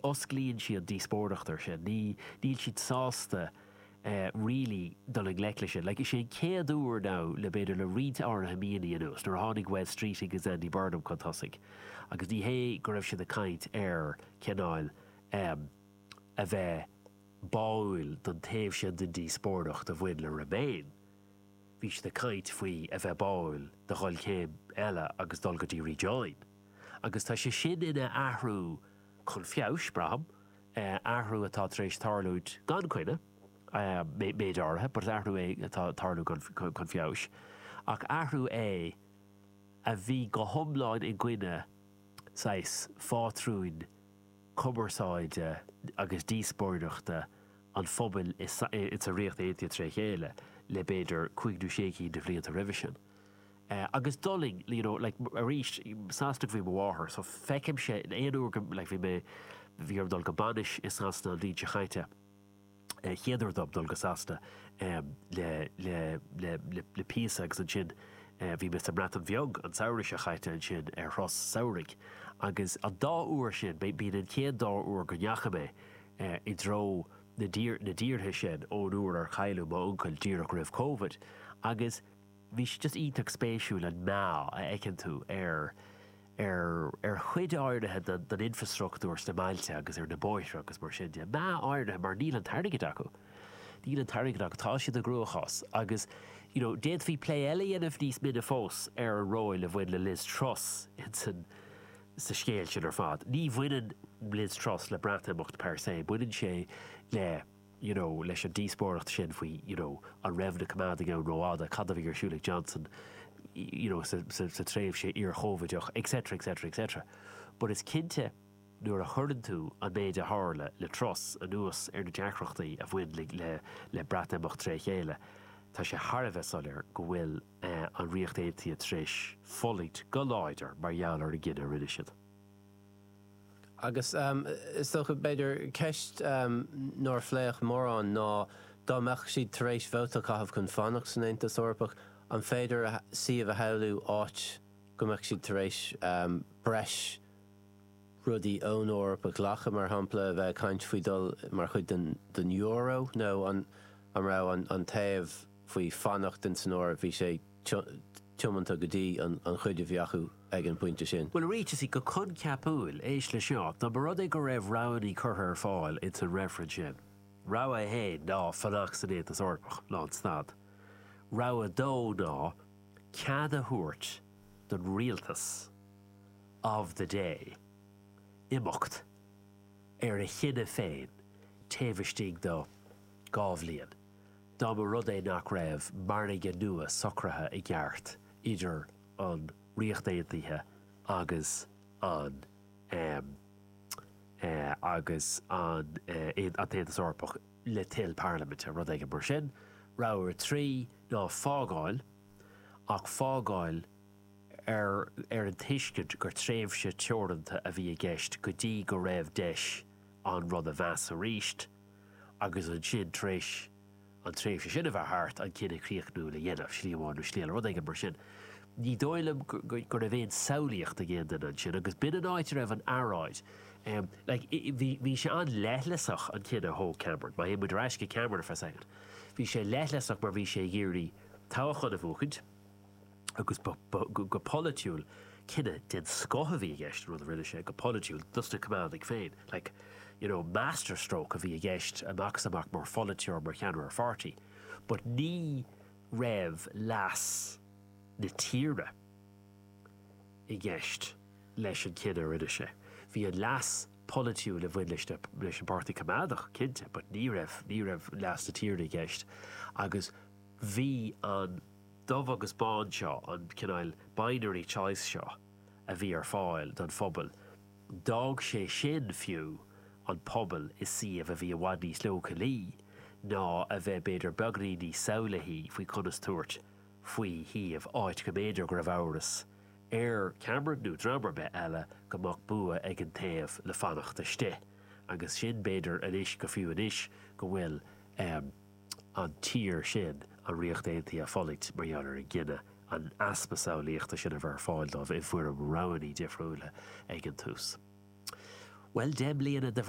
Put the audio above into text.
osclaíonn siad díospóireacht ar sin. Ní, níl siad sásta eh really dul i ngleic le sin. Like is é an chéad uair now le b'fhéidir le roinnt áirithe míonna anuas, nuair a tháinig Wes Streeting agus Andy Burnham chun tosaigh agus ní hé go raibh siad ag caint ar cineáil em a bheith báúil don taobh sin den díospóireacht a bhain le remain, bhí siad ag caint faoi a bheith báúil do dhul céim eile agus dul go dtí rejoin. Agus tá sé sin ina athrú. chun feabhais, braithim, athrú atá tar éis tarlú gan coinne, méid áirithe, but is athrú é atá ag tarlú chun feabhais, ach athrú é a bhí go hiomlán i gcoinne saghas phátrúin chumarsáide agus díospóireachta an phobail insa Ríocht Aontaithe tré chéile le b'fhéidir cúig nó sé cinn de bhlianta roimhe sin. Eh, agus d'fhulaing, you know, like, arís, Sasanach ab ea mo mháthair, so feicimse aon uair go, like, bhí mé, bhí orm dul go bainis i Sasana an bhliain seo chaite, eh, chéad uair dom dul go Sasana, em, le, le, le, le, le píosa agus ansin, eh, bhí mé sa mBreatain Bheag an samhradh seo chaite ansin ar thuras samhraidh agus an dá uair sin, b'é, b'in an chéad dá uair go ndeachaigh mé, eh, i dtreo na dtír, na dtíortha sin ón uair ar cailleadh m'uncail díreach roimh Covid agus, bhí sé just iontach spéisiúil an meath a fheiceann tú ar ar ar chuid áirithe den den infrastruchtúr sna mbailte agus ar na bóithre agus mar sin de. Meath áirithe mar níl an t-airgead acu. Níl an t-airgead acu. Tá siad i gcruachás agus you know d'fhéadfaí plé eile a dhéanamh níos mine fós ar an ról a bhain le Liz Truss in san sa scéal sin ar fad. Ní bhaineann Liz Truss le Breatimeacht per se, baineann sé le you know, leis an díospóireacht sin faoi, you know, an raibh na coimeádaigh ann rófhada, cad a bhí ar siúl ag Johnson, you know, sa, sa, sa tréimhse iar-Chovideach, etc, etc, etc. But is cinnte, nuair a chuireann tú an méid a tharla le Truss anuas ar na deacrachtaí a bhain le, le, le Breatimeacht tré chéile, tá sé thar a bheith soiléir go bhfuil, eh, an Ríocht Aontaithe tar éis fulaingt go láidir mar gheall ar an gcinneadh a rinne siad. Agus is dócha, b'fhéidir, ceist nár pléadh mórán ná, dá mbeadh siad tar éis vóta a chaitheamh chun fanacht san Aontas Eorpach, an féidir suíomh a shamhlú áit go mbeadh siad tar éis breis rudaí ón Eoraip a ghlacadh, mar shampla, a bheith ag caint faoi dhul mar chuid den euro, nó an raibh an taobh faoi fanacht in san Eoraip, bhí sé. tiomanta go dtí an chuid a bheadh acu ag an bpointe sin. Bhuel, arís go coincheapúil, éist leis seo, dá mba rud é go raibh roghanna curtha ar fáil insan reifreann sin, rogha a haon ná fanacht san Aontas Eorpach lánstad, rogha a dó ná cead a thabhairt don rialtas of the day imeacht ar a chinneadh féin taobh istigh de dhá bhliain. dá mba rud é nach raibh margadh nua socraithe i gceart idir an Ríocht Aontaithe agus an agus an tAontas Eorpach le toil parlaiminte, rud éigin mar sin. Rogha 3 ná fágáil, ach fágáil ar ar an tuiscint gur tréimhse teoranta a bhí i gceist go dtí go raibh deis an rud a mheas arís, agus ansin tar éis an tréimhse sin a bheith thart, an cinneadh críochnúil a dhéanamh, slí amháin nó slí eile, rud éigin mar sin. Ní dóigh liom go raibh aon samhlaíocht ag aon duine ansin agus b'in an áit a raibh an earráid. Bhí sé an-leithleasach, an cinneadh a thóg Cameron, má théann muid ar ais go Cameron ar feadh soicind, bhí sé leithleasach mar bhí sé ag iarraidh toghchán a bhuachaint, agus go polaitiúil, cinneadh den scoth a bhí i gceist, an rud a rinne sé, go polaitiúil, dosna Coimeádaigh féin, like, you know, master stroke a bhí i gceist amach is amach mar pholaiteoir, mar cheannaire pháirtí, but ní raibh leas na tíre i gceist leis an gcinneadh a rinne sé. Bhí an leas polaitiúil a bhain leis na, leis an Páirtí Coimeádach, cinnte, but ní raibh, ní raibh leas na tíre i gceist agus bhí an, dubh agus bán seo, an cineál binary choice seo a bhí ar fáil don phobal, d'fhág sé sin fiú an pobal i suíomh a bhí i bhfad níos leochailí ná a bheith b'fhéidir beagainín níos samhlaithí faoi conas tabhairt faoi suíomh, áit go mb'fhéidir go raibh amhras ar Cameron, nó dream ar bith eile, go mbeadh bua ag an taobh le fanacht istigh. Agus sin b'fhéidir anois, go fiú anois go bhfuil. an tír sin an Ríocht Aontaithe ag fulaingt mar gheall ar an gcinneadh an easpa samhlaíochta sin a bheith ar fáil dóibh i bhfoirm roghanna difriúla ag an tús. Bhuel, deich mbliana de.